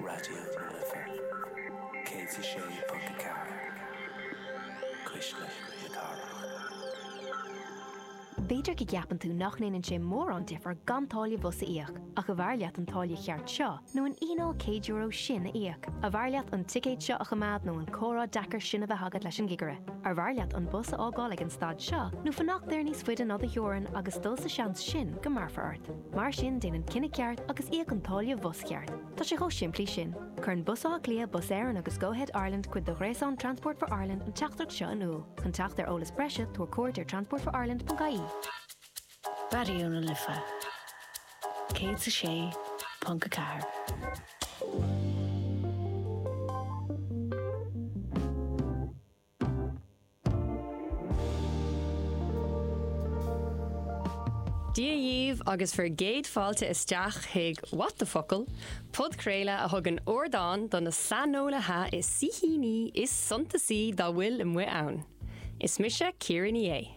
Raidió na Life 106.4 Cuisle na Cathrach. B'fhéidir go gceapann tú nach ndéanann sé mórán difear gan táille bhus a íoc, ach arbh fhearr leat an táille cheart seo nó an fhíneáil €100 sin a íoc? Arbh fhearr leat an ticéad seo a choimeád nó an comhrá deacair sin a bheith agat leis an gcigire? Arbh fhearr leat an bus a fhágáil ag an stad seo nó fanacht air níos faide ná do theorainn agus dul sa seans sin go mbéarfar ort? Mar sin déan an cinneadh ceart agus íoc an táille bhus cheart. Tá sé chomh simplí sin. Cuireann Bus Átha Cliath, Bus Éireann agus Go-Ahead Ireland cuid de ghréasán Transport for Ireland an teachtaireacht seo in iúl. Chun teacht ar eolas breise tabhair cuairt ar transportforireland.ie. Raidió na Life 106.4. Dia daoibh agus bhur gcéad fáilte isteach chuig What the Focal? podchraoladh a thugann ardán do na saineolaithe is na saoithíní is suntasaí dá bhfuil amuigh ann. Is mise Ciara Ní É.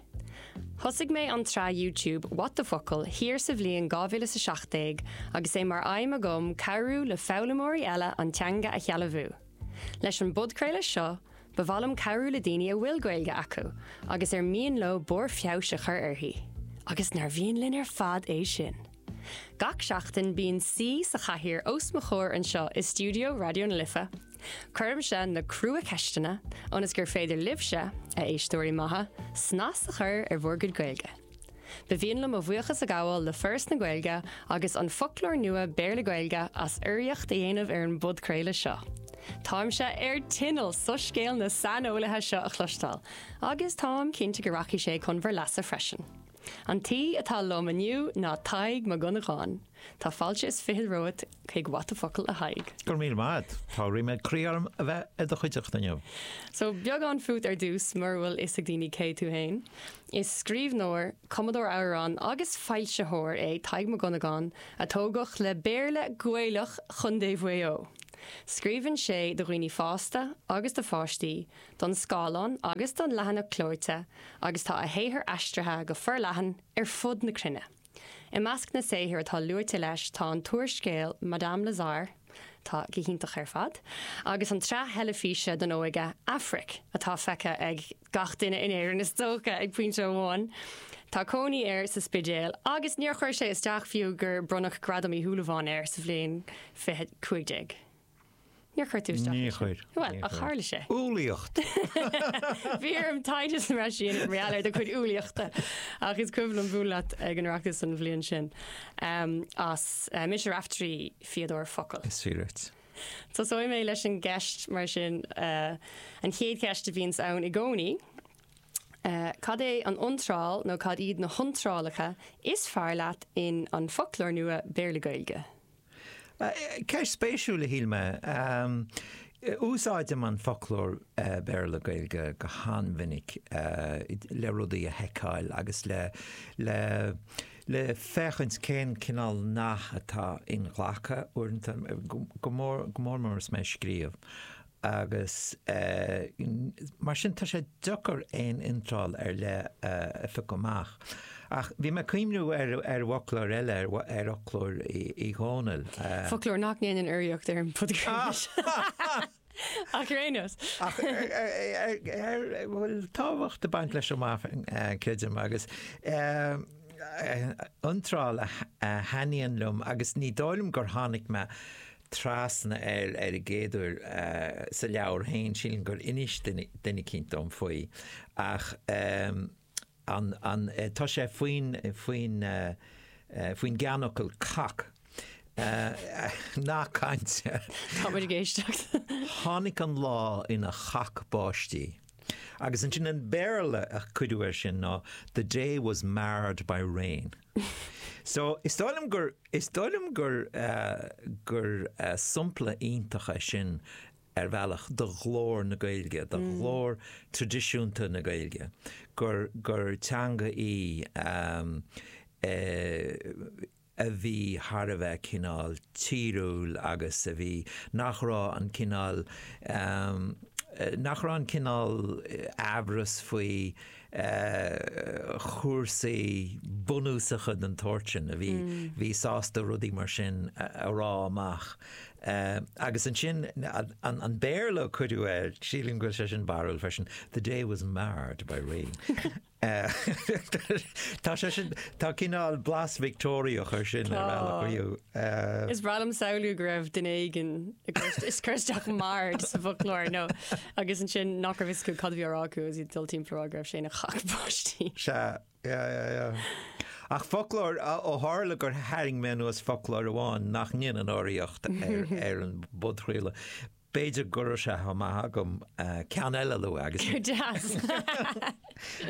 Thosaigh mé an tsraith YouTube What the Focal? thiar sa bhliain 2017 agus é mar aidhm agam cabhrú le foghlaimeoirí eile an teanga a shealbhú. Leis an bpodchraoladh seo, ba mhaith liom cabhrú le daoine a bhfuil Gaeilge acu agus ar mian leo barr feabhais a chur uirthi, agus nár mhian linn ar fad é sin! Gach seachtain, bíonn saoi sa chathaoir os mo chomhair anseo i stiúideo Raidió na Life. Cuirimse na crua-cheisteanna ionas gur féidir libhse, a éisteoirí maithe, snas a chur ar bhur gcuid Gaeilge. Ba mhian liom mo bhuíochas a ghabháil le Foras na Gaeilge agus An Foclóir Nua Béarla-Gaeilge as urraíocht a dhéanamh ar an bpodchraoladh seo. Táimse ar tinneall soiscéal na saineolaithe seo a chloisteáil agus táim cinnte go rachaidh sé chun bhur leasa freisin. An t-aoi atá liom inniu ná Tadhg Mac Dhonnagáin. Tá fáilte is fiche romhat, chuig What the Focal a Thaidhg. Go raibh míle maith agat. Tá ríméad croí orm a bheith i do chuideachta inniu. So, beagán fút ar dtús, mura bhfuil fhios ag daoine cé tú fhéin. Is scríbhneoir, cumadóir amhrán agus foilsitheoir é Tadhg Mac Dhonnagáin a tógadh le Béarla Gaelach Chontae Mhaigh Eo. Scríobhann sé do dhaoine fásta agus do pháistí, don scáileán agus don leathanach clóite agus tá a shaothar aistrithe go forleathan ar fud na cruinne. I measc na saothar atá luaite leis tá an t-úrscéal Madame Lazare, atá go hiontach ar fad, agus an tsraith theilifíse don óige Aifric, atá feicthe ag gach duine in Éirinn is dócha ag pointe amháin. Tá cónaí air sa Spidéal agus níor chuir sé isteach fiú gur bronnadh Gradam Uí Shúilleabháin air sa bhliain 2015. Níor chuir tú isteach é sin. Níor chuir. Bhuel, níor ach chuir. tharla sé. Ealaíocht! Bhí orm taighde sa mbreis a dhéanamh mar gheall ar do chuid ealaíochta ach is cuimhin liom bualadh leat ag an Oireachtas an bhliain sin ehm, as eh, Mise Raifteirí, Fíodóir Focal. Is fíor duit. Tosóidh mé leis an gceist mar sin, eh, an chéad cheist a bhíonns ann i gcónaí, eh, cad é an iontráil nó cad iad na hiontrálacha is fearr leat in an foclóir nua Béarla-Gaeilge? Ceist spéisiúil a shíl mé. Úsáidim an foclóir Béarla-Gaeilge go han-mhinic le rudaí a sheiceáil agus le féachaint cén cineál nath atá inghlactha uaireanta, go mór mór is mé ag scríobh. agus mar sin tá sé deacair aon iontráil ar leith a phiocadh amach. Ach bhí mé ag cuimhniú ar fhoclóir eile, ar fhoclóir Uí Dhónaill. Foclóir nach ndéanann urraíocht ar an bpodcraost seo ach ar aon nós. Ach a bhfuil tábhacht ag baint leis a mhac creidim agus iontráil a thaitníonn liom agus ní dóigh liom gur tháinig mé trasna air ar an gcéad uair sa leabhar féin, sílim gur inis duine eicínt dom faoi, ach tá sé faoin, faoin gceannfhocal cac. Nath cainte. Tá muid ag éisteacht. Tháinig an lá ina chac báistí. Agus ansin an Béarla a cuireadh air sin ná, The day was marred by rain. So, is dóigh liom gur, is dóigh liom gur, gur sompla iontach é sin ar bhealach de ghlór na Gaeilge, de ghlór traidisiúnta na Gaeilge, gur, gur teanga í a bhí thar a bheith cineál tíriúil agus a bhí, nach raibh an cineál, nach raibh an cineál amhras faoi, chúrsaí bunúsacha den tsórt sin a bhí bhí sásta rudaí mar sin a rá amach. Agus ansin an Béarla a cuireadh air, sílim go bhfuil sé sin barrúil freisin, 'The day was marred by rain'. Tá sé sin, tá, tá cineál blas Victeoiriach air sin ar bhealach riamh. Is breá liom samhlú go raibh duine éigin ag cur isteach marred sa bhfoclóir nó agus ansin nach raibh a fhios acu cad a bhí á rá acu agus iad ag dul timpeall ag rá go raibh sé ina chac báistí. Sea, yeah, yeah, yeah. Ach foclóir, ó tharla gur tharraing mé anuas foclóir amháin nach ndéanann urraíocht ar an bpodchraoladh, B'fhéidir go raibh sé chomh maith agam ceann eile a lua agus sin. Go deas!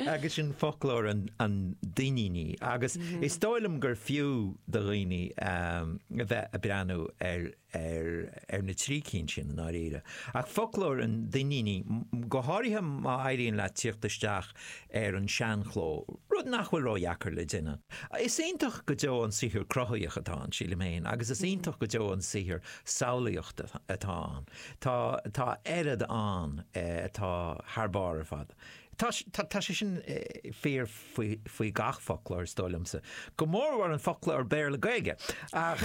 agus sin foclóir an Duinnínigh. Agus is dóigh liom gur fiú do dhaoine a bheith ag breathnú ar na trí cinn sin i ndáiríre. Ach foclóir an Duinnínigh, go háirithe má éiríonn leat tíocht isteach ar an seanchló, rud nach bhfuil ródheacair le déanamh. Is iontach go deo an saothar cruthaíoch atá ann, sílim féin, agus is iontach go deo an saothar samhlaíochta atá ann. Tá, tá oiread ann atá thar barr ar fad. Tá, tá sé sin fíor faoi, faoi gach foclóir is dóigh liomsa, go mórmhór an foclóir Béarla Gaeilge. Ach,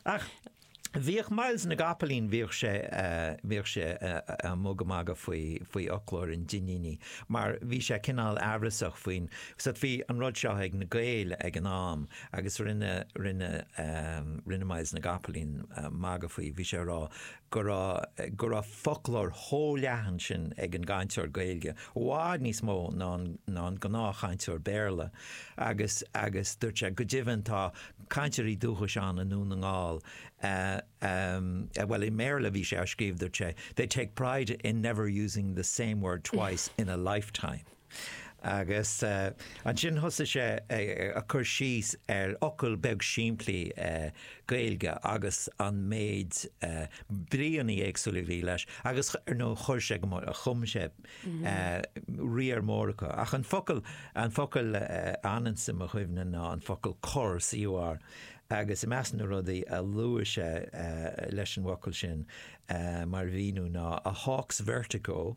ach bhíodh Myles na gCapaillín, bhíodh sé, bhíodh sé a' mugadh magadh faoi, faoi fhoclóir an Duinnínigh mar bhí sé cineál amhrasach faoin, bhí an rud seo ag na Gaeil ag an am, Agus rinne, rinne, rinne Myles na gCapaillín magadh faoi, bhí sé ag rá go raibh, go raibh foclóir chomh leathan sin ag an gcainteoir Gaeilge, i bhfad níos mó ná an, ná an gnáthchainteoir Béarla agus, agus dúirt sé, go deimhin tá cainteoirí dúchais ann i nDún na nGall a, a, bhuel i mBéarla a bhí sé á scríobh dúirt sé, they take pride in never using the same word twice in a lifetime. Agus ansin thosaigh sé ag cur síos ar fhocal beag simplí Gaeilge agus an méid bríonna éagsúla a bhí leis agus ar ndóigh chuir sé go, chum sé riar mór acu. Ach an focal, an focal a fhananns i mo chuimhne ná an focal cor, COR, agus i measc na rudaí a luaigh sé leis an bhfocal sin mar mhíniú ná, a hawk's vertigo,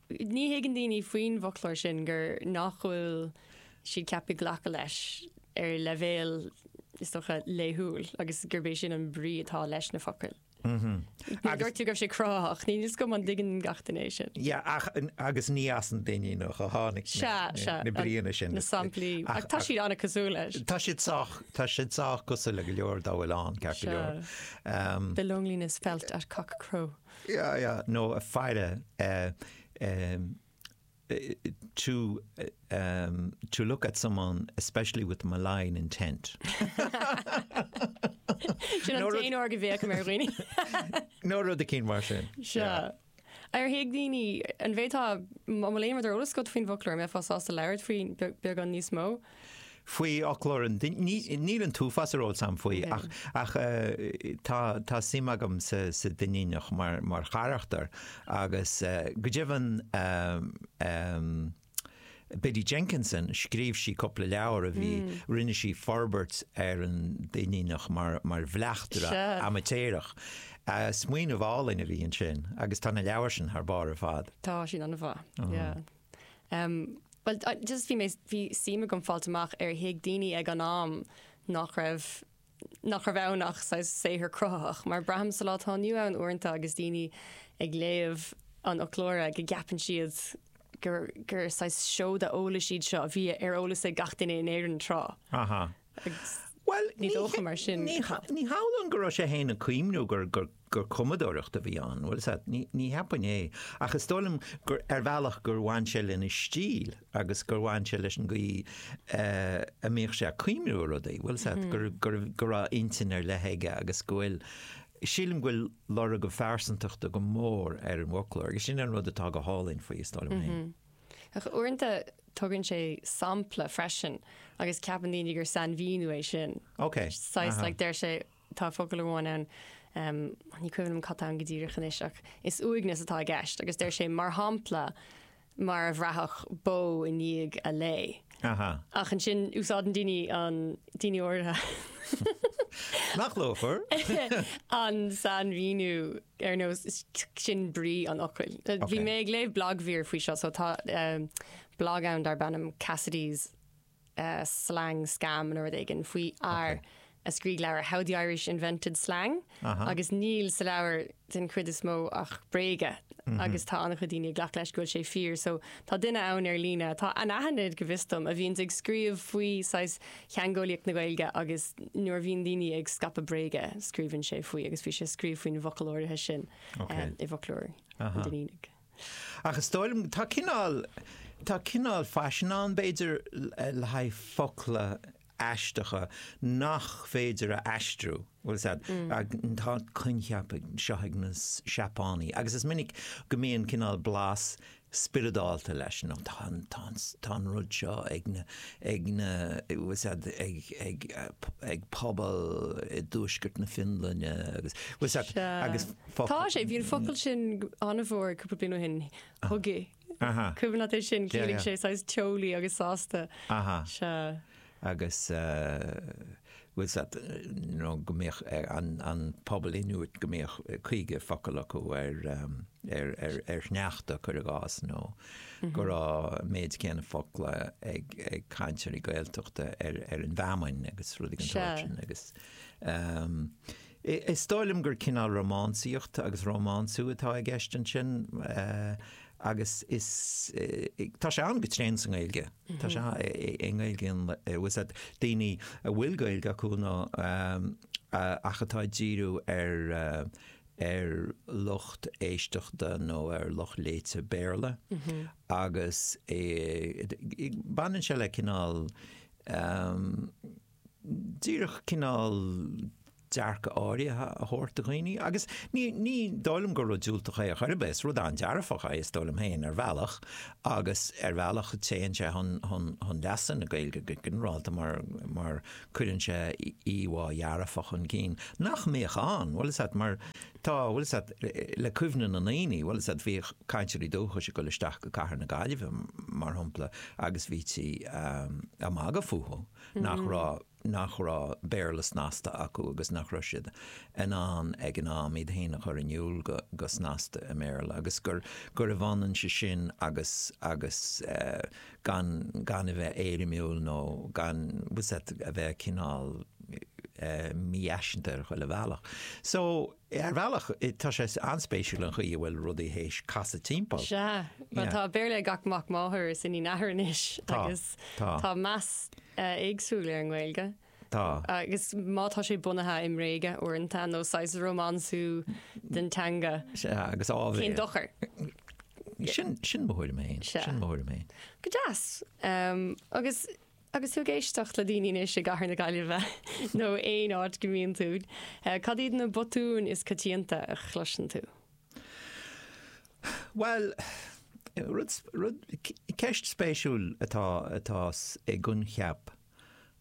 Ní thuigeann daoine faoin bhfoclóir sin gur nach bhfuil siad ceaptha glacadh leis ar leibhéal, is dócha, laethúil agus gurb é sin an brí atá leis na focail. Mar dúirt tú go raibh sé cruthaitheach, níl a fhios agam an dtuigeann gach duine é sin. Yeah, ach, agus ní as an Duinníneach a tháinig na bríonna sin. Na samplaí, ach tá siad an-chosúil leis. Tá siad sách, tá siad sách cosúil le go leor dá bhfuil ann, ceart go leor. Um, the loneliness felt at cockcrow. nó a faire to to look at someone especially with malign intent. Sin an t-aon uair go bhféachaim ar dhaoine. nó rud eicínt mar sin. Sea. Ar thuig daoine, an bhféadfá, tá a lán rud ar eolas agat faoin bhfoclóir, an mbeifeá sásta labhairt faoi beagán níos mó? faoi fhoclóir an duine. Níl an t-uafás ar eolas agam faoi ach tá suim agam sa Duinníneach mar charachtar agus go deimhin Biddy Jenkinson, scríobh sí cúpla leabhar a bhí, rinne sí forbairt ar an Duinníneach mar bhleachtaire amaitéarach. Smaoineamh álainn a bhí ansin agus tá na leabhair sin thar barr ar fad. Tá, sin an-mhaith. Bhuel, just bhí mé, bhí suim agam fáil amach ar thuig daoine ag an am nach raibh, nach raibh ann ach saghas saothar cruthaitheach, mar braithim sa lá atá inniu ann uaireanta agus daoine ag léamh an fhoclóra go gceapann siad gur, gur saghas seoda eolais iad seo a bhí ar eolas ag gach duine in Éirinn tráth. Agus Bhuel, ní dócha mar sin. ní hamhlaidh go raibh sé fhéin ag cuimhniú gur gur cumadóireacht a bhí ann. Bhuel, sea, ní ní cheapaim é. Ach is dóigh liom gur ar bhealach gur bhain sé lena stíl agus gur bhain sé leis an gcaoi a mbíodh sé ag cuimhniú ar rudaí. Bhuel, sea, gur gur go raibh intinn ar leith aige agus go bhfuil sílim go bhfuil lorg a phearsantachta go mór ar an bhfoclóir agus sin an rud atá go hálainn faoi, is dóigh liom fhéin. Ach uaireanta tugann sé sampla freisin agus ceapann daoine gur sainmhíniú é sin. Ok. Saghas, like, deir sé, tá focal amháin ann, um, ní cuimhin liom cad tá ann go díreach anois, ach is uaigneas atá i gceist agus deir sé mar shampla mar a bhraithfeadh bó i ndiaidh a lao. Aha. Ach ansin, úsáideann daoine an, daoine áirithe, Nach luachmhar? an sainmhíniú ar nós sin brí an fhocail. Bhí Okay. mé ag léamh blagmhír faoi seo, so tá um, blag ann darb ainm Cassidy's uh, Slang Scam nó rud éigin faoi fhear a scríobh leabhar How the Irish Invented Slang agus níl sa leabhar den chuid is mó ach bréaga agus tá an-chuid daoine ag glacadh leis go bhfuil sé fíor. So tá duine ann ar líne atá anaithnid, go bhfios dom, a bhíonn ag scríobh faoi saghas theangeolaíocht na Gaeilge agus nuair a bhíonn daoine ag scaipeadh bréaga, scríobhann sé faoi agus bhí sé ag scríobh faoin bhfocal áirithe sin i bhfoclóir an Duinnínigh. Ach is dóigh liom, tá cineál, tá cineál faisin ann b'fhéidir le haghaidh focla, aisteacha nach féidir a aistriú. Tá an coincheap seo ag na Seapánaigh agus is minic go mbíonn cineál blas spioradálta leis, tá an rud seo ag pobal i dtuaisceart na Fionlainne agus. Sea. Tá sé, bhí an focal sin an-mhór cúpla bliain ó shin, hygge. Aha. Cuimhin leat é sin, Yeah, ciallaíonn yeah. sé saghas teolaí agus sásta. Aha. Sea. agus eh, bhfuil a fhios agat nó go mbíodh eh, an, an pobal Inuit go mbíodh eh, caoga focal acu ar, em, ar, ar, ar shneachta cuir i gcás nó go raibh an méid céanna focla ag, ag cainteoirí Gaeltachta ar, ar an bhfeamainn agus rudaí den Sea. sórt sin agus em, Is dóigh liom gur cineál rómánsaíocht agus rómánsú atá i gceist ansin agus is, tá sé ann go tréan sa nGaeilge, tá sé i nGaeilge an, bhfuil a fhios agat daoine a bhfuil Gaeilge acu nó ach atá ag díriú ar ar lucht éisteachta nó ar lucht léite Béarla agus baineann sé le cineál. díreach cineál dearcadh áirithe a thabhairt do dhaoine agus ní, ní dóigh liom gur rud diúltach é ar chor ar bith, is rud an-dearfach é is dóigh liom féin ar bhealach agus ar bhealach téann sé chun, chun, chun leasa na Gaeilge go ginearálta mar, mar cuireann sé íomhá dhearfach chun cinn nach mbíodh ann, bhfuil a fhios agat mar tá, bhfuil a fhios agat le cuimhne na ndaoine, bhfuil a fhios agat bhíodh cainteoirí dúchais ag dul isteach go cathair na Gaillimhe mar shampla agus bhítí ag magadh fúthu. nach raibh, nach raibh Béarla snasta acu agus nach raibh siad in ann ag an am iad féin a chur in iúl go, go snasta i mBéarla agus gur, gurbh ionann é sin agus, agus eh, gan, gan a bheith éirimiúil nó gan, bhfuil a fhios agat, a bheith cineál eh, mífhaiseanta ar chuile bhealach. So. Ar bhealach, tá sé an-spéisiúil an chaoi a bhfuil rudaí théis casadh timpeall. Sea. Bhuel, tá Béarla ag gach mac máthar is iníon athar anois agus tá meas éagsúil ar an nGaeilge. Tá. Agus má tá sé bunaithe i mbréag uaireanta nó saghas rómánsú den teanga, cén dochar? Sin mo thuairim fhéin. Sin mo thuairim fhéin. Go deas. Agus. Agus tú ag éisteacht le daoine anois i gcathair na Gaillimhe nó aon áit go mbíonn tú, cad iad na botúin is coitianta a chloiseann tú? Bhuel, rud, rud, ceist spéisiúil atá, atá i gcoincheap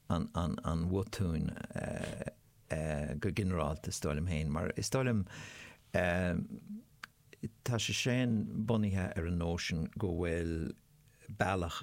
an, an, an bhotúin eh, eh, go ginearálta is dóigh liom féin, mar is dóigh liom eh, tá sé sin bunaithe ar an nóisean go bhfuil bealach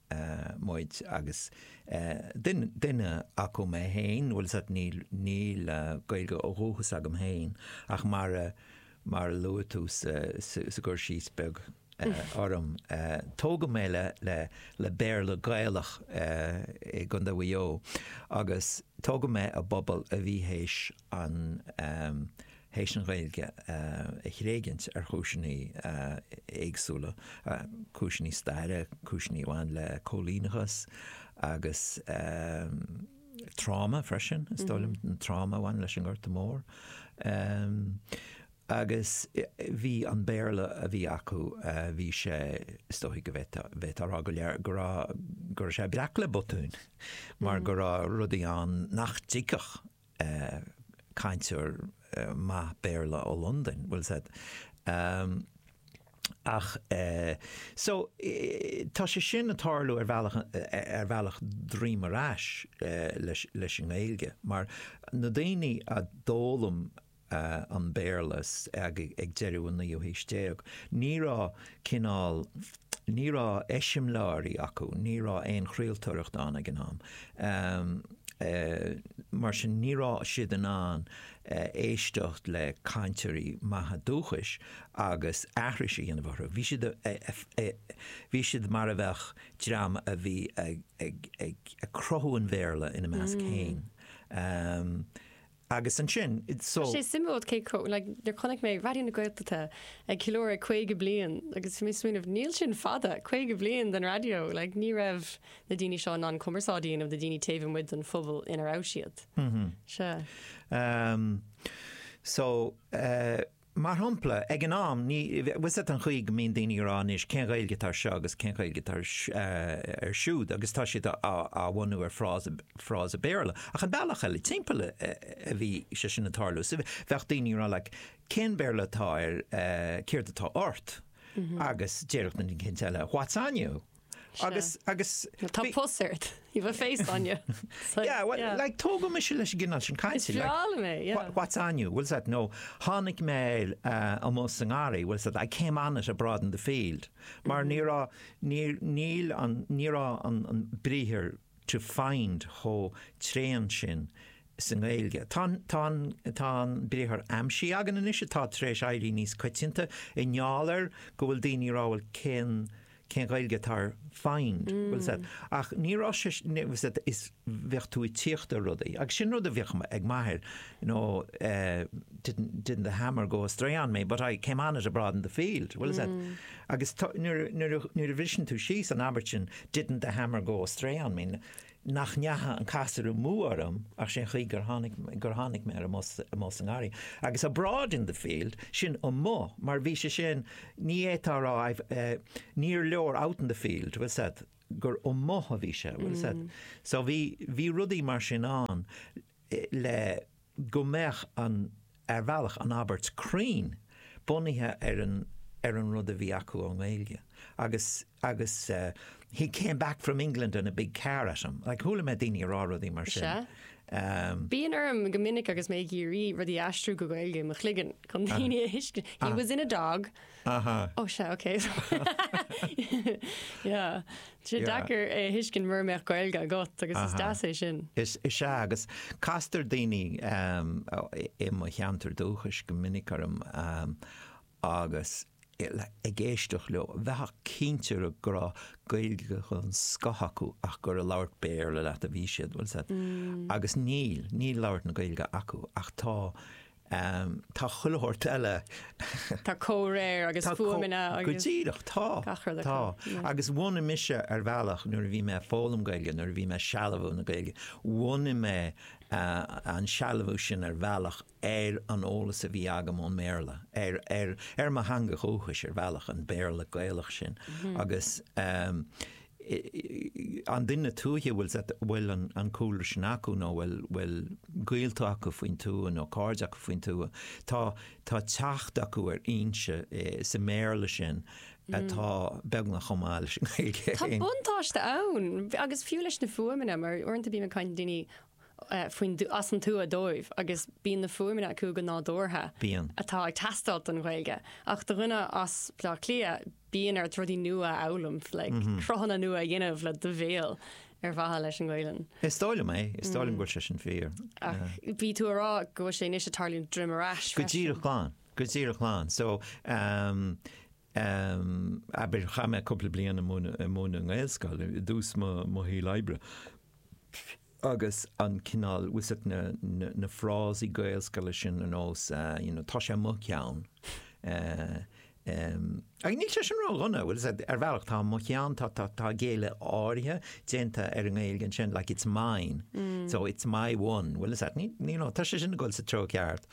muid agus duine acu mé féin, bhfuil a fhios agat, níl Gaeilge ó dhúchas agam féin ach mar a luaigh tú sa gcur síos beag orm, tógadh mé le Béarla Gaelach i gContae Mhaigh Eo agus tógadh mé i bpobal a bhí théis tar éis an Ghaeilge a thréigint ar chúiseanna éagsúla, cúiseanna staire, cúiseanna a bhain le cóilíneachas agus tráma freisin, is dóigh liom, an tráma a bhain leis an nGorta Mór. Agus bhí an Béarla a bhí acu, bhí sé, is dóigh go bhféadfá a rá go raibh, go raibh, go raibh sé breac le botúin mar go raibh rudaí ann nach dtuigfeadh, cainteoir maith Béarla ó Londain, bhfuil a fhios a'd, em, ach eh, so, tá sé sin ag tarlú ar bhealach, ar bhealach droim ar ais leis an nGaeilge, mar na daoine a d'fhoghlaim an Béarla ag deireadh an naoú haois déag, ní raibh cineál, ní raibh eiseamláirí acu, ní raibh aon chraoltóireacht ann ag an am. Mar sin ní raibh siad in ann éisteacht le cainteoirí maithe dúchais agus aithris a dhéanamh orthu. Bhí siad, bhí siad mar a bheadh dream a bhí ag cruthú an Bhéarla ina measc féin. Agus ansin, so. Tá sé suimiúil cé chomh, like, nuair chonaic mé Raidió na Gaeltachta ag ceiliúradh 50 bliain agus bhí mé ag smaoineamh, níl sin fada, 50 bliain den raidió, like, ní raibh na daoine seo in ann cumarsáid a dhéanamh le daoine taobh amuigh den phobal ina raibh siad. Sea. So, eh, Mar shampla, ag an am, ní, bhfuil a fhios a'd an chaoi go mbíonn daoine ag rá anois, cén Ghaeilge atá ar seo agus cén Ghaeilge atá ar, ar siúd agus tá siad á, á bhunú ar fhrása, frása Béarla. Ach an bealach eile timpeall a, a bhí sé sin ag tarlú. So bheadh daoine ag rá like, cén Béarla atá ar, céard atá ort? Agus déarfadh an ceann eile, what's on you? Agus, agus. Tá pus ort. You have a face on you. Yeah, well, like, tógadh mise leis an gcineál sin cainte. Is breá liom é, yeah. What's on you? Bhfuil a fhios a'd? Nó, tháinig mé air amuigh sa ngarraí, bhfuil a fhios a'd? I came on it abroad in the field. Mar ní raibh, níor, níl an, ní raibh an, an briathar to find chomh tréan sin sa nGaeilge. Tá an, tá an, tá an briathar aimsigh againn anois atá tar éis éirí níos coitianta i ngeall ar go bhfuil daoine ag rá, bhuel, cén, cén Ghaeilge atá ar find, bhfuil a fhios a'd, ach ní raibh sé, bhfuil a fhios a'd, is bheadh tú ag tíocht ar rudaí agus sin rud a bheadh ag m'athair you know eh didn't, didn't the hammer go astray on me but I came on it abroad in the field, bhfuil a fhios a'd agus nuair a bhriseann tú síos an abairt sin didn't the hammer go astray on me, nach ndeacha an casúr amú orm ach sé'n chaoi gur tháinig, gur tháinig mé air amuigh sa, amuigh sa ngarraí. Agus abroad in the field, sin amuigh, mar bhí sé sin, ní fhéadfá a rá I've eh, níor leor out in the field, bhfuil 's a'd, gur amuigh a bhí sé, bhfuil 's a'd. So bhí, bhí rudaí mar sin ann. le go mbeadh an, ar bhealach, an abairt cruinn bunaithe ar an, ar an rud a bhí acu ón nGaeilge. Agus, agus eh, he came back from England in a big car at him, like chuala mé daoine ag rá rudaí mar sin. Sea. Ehm, Bíonn orm go minic agus mé ag iarraidh rudaí a aistriú go Gaeilge i mo chloigeann chun daoine a thuiscint. He was in a dog. Aha. Oh sea ok yeah sé deacair é a thuiscint mura mbeadh Gaeilge agat agus is deas é sin. Is ea agus castar daoine i mo cheantar dúchais go minic orm agus ag éisteacht leo bheifeá cinnte go raibh Gaeilge den scoth acu ach gur ag labhairt Béarla leat a bhí siad agus níl, níl labhairt na Gaeilge acu ach tá Tá chuile shórt eile. Tá comhréir agus fuaimeanna. Go díreach, tá. Gach rud acu. Tá. Agus bhunaigh mise ar bhealach, nuair a bhí mé ag foghlaim Gaeilge, nuair a bhí mé ag sealbhú na Gaeilge, bhunaigh mé an sealbhú sin ar bhealach ar an eolas a bhí agam ón mBéarla, ar, ar, ar mo theanga dhúchais ar bhealach, an Béarla Gaelach sin. Agus an duine tuaithe, a bhfuil a bhfuil an cúlra sin acu nó bhfuil bhfuil gaolta acu faoin tuath nó cairde acu faoin tuath. Tá tá teacht acu ar fhoinse sa mBéarla sin atá beagnach chomh maith leis an nGaeilge féin. Tá buntáiste ann agus fiú leis na fuaimeanna mar uaireanta bím ag caint le daoine faoin, is ón tuath dóibh agus bíonn na fuaimeanna acu go nádúrtha Bíonn. atá ag teastáilt don Ghaeilge. Ach do dhuine as Baile Átha Cliath, bíonn ort rudaí nua a fhoghlaim, like cruthanna nua a dhéanamh le do bhéal ar mhaithe leis an Ghaelainn. Is dóigh liom é, is dóigh liom go bhfuil sé sin fíor. Ach bhí tú a rá go bhfuil sé anois ag tarlú droim ar ais freisin. Go díreach, go díreach, so, Am, abair, chaith mé cúpla bliain ag múineadh, ag múineadh i nGaelscoil, i dtús mo, mo shaoil oibre. Agus an cineál, bhfuil fhios a'd na, na, na frásaí Gaelscoile sin ar nós eh, you know, tá sé mo cheann. Eh, em, ach níl sé sin ró-dhona, bhfuil fhios a'd, ar bhealach tá mo cheann, tá, tá, tá géilleadh áirithe déanta ar an nGaeilge ansin, like it's mine, so it's my one, bhfuil fhios a'd, ní, ní, nó, tá sé sin ag goil sa treo ceart.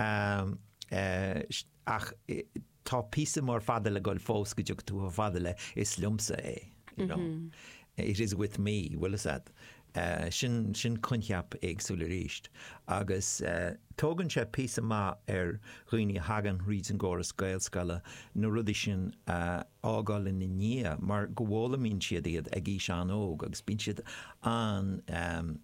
Am, eh, sh- ach, eh, tá píosa mór fada le goil fós go dtiocfaidh tú chomh fada le is liomsa é you know it is with me bhfuil fhios a'd eh, sin, sin coincheap éagsúil arís agus eh, tógann sé píosa maith ar dhaoine a thagann thríd an gcóras Gaelscoile na rudaí sin a fhágáil ina ndiaidh mar go bhfoghlaimíonn siad iad ag aois an-óg agus bíonn siad an-, eh,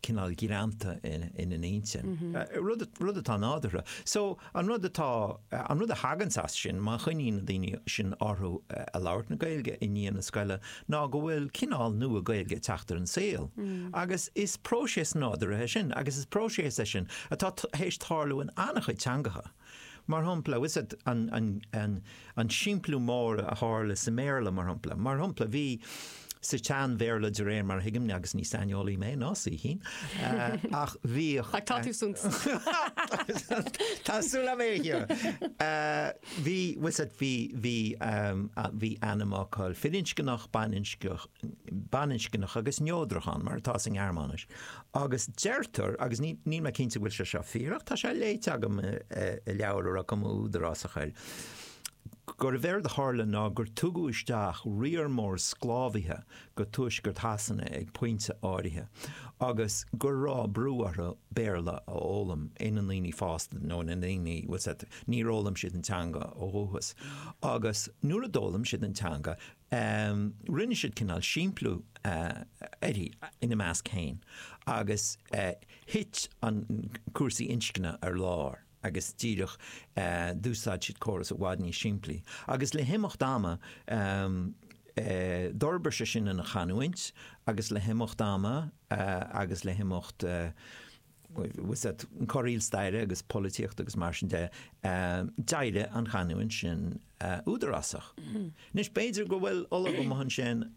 cineál greanta ina n-intinn. Rud atá nádúrtha. So, an rud atá, an rud a thaganns as sin, má choinníonn na daoine sin orthu ag labhairt na Gaeilge i ndiaidh na scoile, ná go bhfuil cineál nua Gaeilge ag teacht ar an saol. Agus is próiseas nádúrtha é sin, agus is próiseas é sin atá tar éis tarlú in an-chuid teangacha. Mar shampla, you know, an simpliú mór a tharla sa mBéarla, mar shampla. Mar shampla, bhí sa tSean-Bhéarla, de réir mar a thuigim, agus ní saineolaí mé, ná saoithín, ach bhíodh. you know, bhí, bhí ainmfhocail firinscneach, baininscneach agus neodrach ann, mar atá sa nGearmáinis. agus deirtear, agus níl mé cinnte go bhfuil sé seo fíor ach tá sé léite agam i leabhar a raibh cuma údarásach air, gurbh éard a tharla ná gur tugadh isteach riar mór sclábhaithe go tuaisceart Shasana ag pointe áirithe agus go raibh brú orthu Béarla a fhoghlaim ina ndaoine fásta nó ina ndaoine, bhuel, you know, níor fhoghlaim siad an teanga ó dhúchas agus nuair a d'fhoghlaim siad an teanga, Rinne siad cineál simpliú uirthi ina measc féin agus thit an cúrsaí inscne ar lár agus díreach d'úsáid siad córas i bhfad níos simplí agus le himeacht ama d'fhorbair sé sin ina chanúint agus le himeacht ama agus le himeacht corraíl staire agus polaitíochta agus mar sin de, d'éirigh an chanúint sin údarásach. Anois, b'fhéidir go bhfuil ollamh amuigh ansin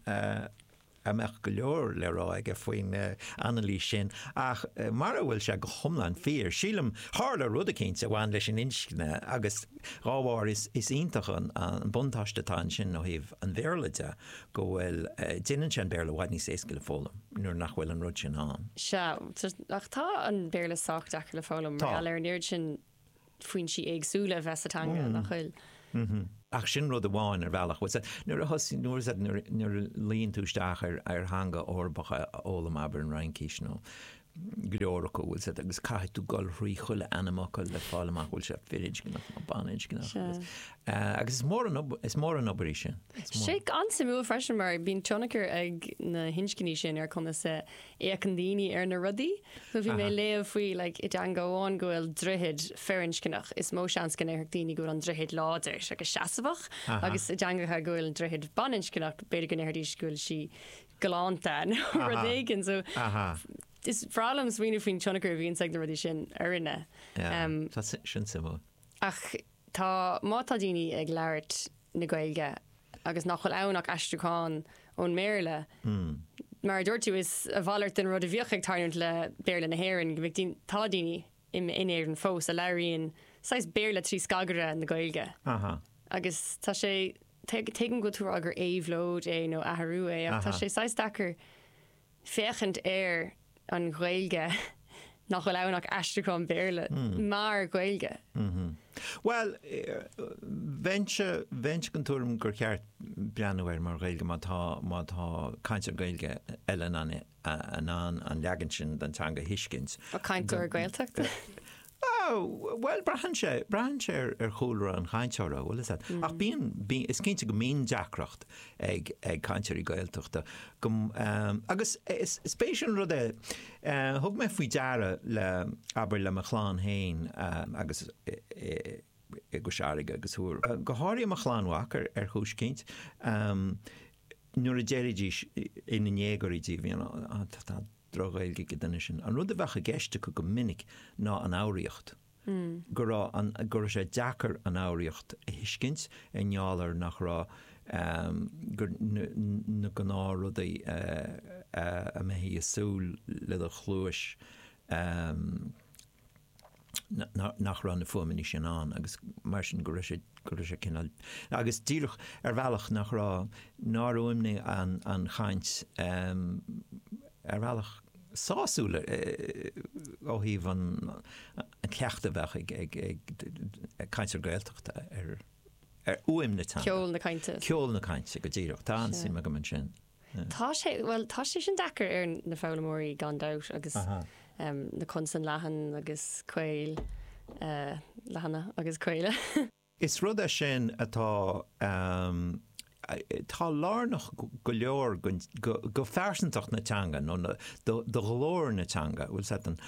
a mbeadh go leor le rá aige faoin anailís sin, ach mara bhfuil sé go hiomlán fíor, sílim, tharla rud eicínt a bhain leis an inscne agus dá mba ea, is iontach an buntáiste atá ansin ó thaobh an Bhéarla de. go bhfuil, déanann sé an Béarla i bhfad níos éasca le foghlaim nuair nach bhfuil an rud sin ann. Sea, ach tá an Béarla sách deacair le foghlaim, mar gheall ar an oiread sin foinsí éagsúla a bheith sa teanga, nach bhfuil? Ach sin rud amháin, ar bhealach. Bhuel, sea, nuair a thosaigh, nuair, sea, nuair a luíonn tú isteach ar theanga Eorpach a fhoghlaim, abair an Fhraincís nó go leor acu a bhfuil said agus caithfidh tú dul thrí chuile ainmfhocal le fáil amach bhfuil sé firinscneach nó baninscneach Sea. agus eh, agus is mór an ob- is mór an obair í sin. Is mór. Tá sé an-suimiúil freisin mar bíonn tionchar ag na hinscní sin ar conas a fhéachann daoine ar na rudaí. So bhí mé Aha. ag léamh faoi like i dteanga amháin go bhfuil droichead firinscneach, is mó seans go ndéarfadh daoine go bhfuil an droichead láidir is agus seasamhach Aha. agus i dteangacha go bhfuil an droichead baninscneach b'fhéidir go ndéarfaidís go bhfuil sí galánta nó rud éigin. So is bhreá liom smaoineamh faoin tionchar a bhíonns ag na rudaí sin ar dhuine. Tá, sin suimiúil. Ach tá, má tá daoine ag labhairt na Gaeilge agus nach bhfuil ann ach aistriúchán ón mBéarla, mar a dúirt tú, is a mhalairt den rud a bhíodh ag tarlúint le Béarla na hÉireann go mbeadh daoine, tá daoine in Éirinn fós a labhraíonn saghas Béarla trí scagaire na Gaeilge. Agus tá sé, Tuigim go bhfuil tú ag rá gur éabhlóid é nó athrú é ach tá sé saghas deacair féachaint ar an Ghaeilge nach bhfuil ann ach aistriúchán Béarla mar Ghaeilge. Bhuel, bheinn den tuairim gur cheart breathnú air mar Ghaeilge má tá cainteoir Gaeilge eile in ann é in ann an leagan sin den teanga a thuiscint. Ba cainteoir Gaeltachta é. Bhuel, braitheann sé. Braitheann sé ar chúlra an chainteora, bhuel, is ea. Ach bíonn, bíonn, is cinnte go mbíonn deacracht ag, ag cainteoirí Gaeltachta go, agus is, is spéis an rud é, thug mé faoi deara le, abair, le mo chlann fhéin agus i gCois Fharraige agus thiar, go háirithe mo chlann mhac ar chúis eicínt, nuair a deiridís ina ndéagóirí dóibh, you know, ah, tá droch-Ghaeilge ag an duine sin. An rud a bheadh i gceist acu go minic ná an fhoghraíocht, go raibh an, go raibh sé deacair an fhoghraíocht a thuiscint i ngeall ar nach raibh, em, gur, na gnáthrudaí a mbeifí a súil le do chluais, em, nach raibh na fuaimeanna sin ann agus mar sin go raibh sé, go raibh sé cineál, agus díreach ar bhealach nach raibh, nár fhuaimnigh an, an chaint ar bhealach sásúil ó thaobh an, an cleachtadh a bheadh ag, ag, ag cainteoir Gaeltachta ar, ar fhuaim na teanga. Ceol na cainte. Ceol na cainte go díreach. Tá an-suim agam ansin. Tá sé, bhuel, tá sé sin deacair ar na foghlaimeoirí gan dabht agus na consain leathan agus caol, leathana agus caola. Is rud é sin atá, atá lárnach go leor do phearsantacht na teanga nó do ghlór na teanga, bhfuil a fhios agat,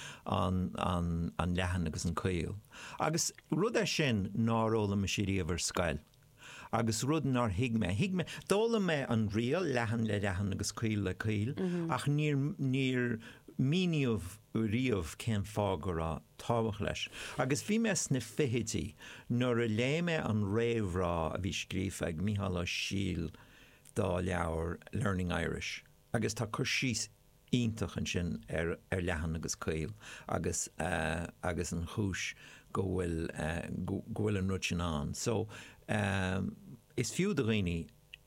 an leathan agus an caol. Agus rud é sin nár fhoghlaim mise riamh ar scoil. agus rud nár thuig mé. Thuig mé, d'fhoghlaim mé an riail, leathan le leathan agus caol le caol, ach níor, níor míníodh riamh cén fáth go raibh tábhacht leis. Agus bhí mé sna fichidí nuair a léigh mé an réamhrá a bhí scríofa ag Mícheál Ó Siadhail dá leabhar Learning Irish. agus tá cur síos iontach ansin ar ar leathan agus caol agus agus an chúis go bhfuil go bhfuil an rud sin ann so is fiú do dhaoine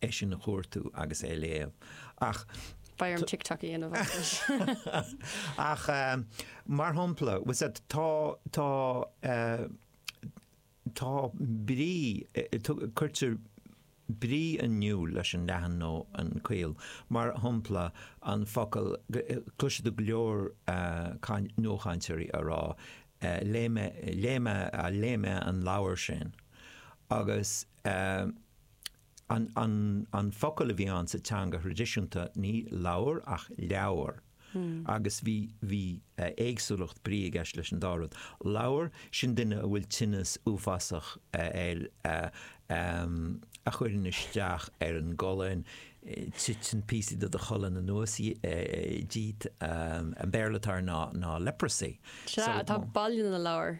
é sin a chuartú agus é a léamh ach Beidh orm TikTok a dhéanamh as. Ach, eh, mar shampla, was that tá tá eh, Tá brí, cuirtear brí in iúl leis an leathan nó an caol, mar shompla, an focal, cloisfidh tú go leor nuachainteoirí á rá, léigh mé, léigh mé, léigh mé an leabhar sin, agus. An focal a bhí ann sa teanga thraidisiúnta, ní lobhar ach leabhar, agus bhí éagsúlacht brí i gceist leis an dá rud. Lobhar, sin duine a bhfuil tinneas uafásach air a chuireann isteach ar an gcolainn, titeann píosaí de do cholainn anuas díot, an Béarla atá air ná leprosy. Sea, tá Baile na Lobhar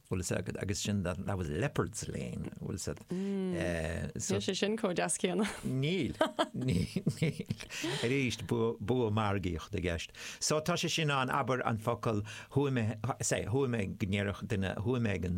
Bhfuil a fhios agat agus sin that that was leopard's lane bhfuil a fhios agat so Níl sé sin chomh deas céanna. Níl Arís bua margaíochta i gceist. So tá sé sin ann abair an focal chuaigh mé say chuaigh mé go ndéarfadh duine chuaigh mé ag an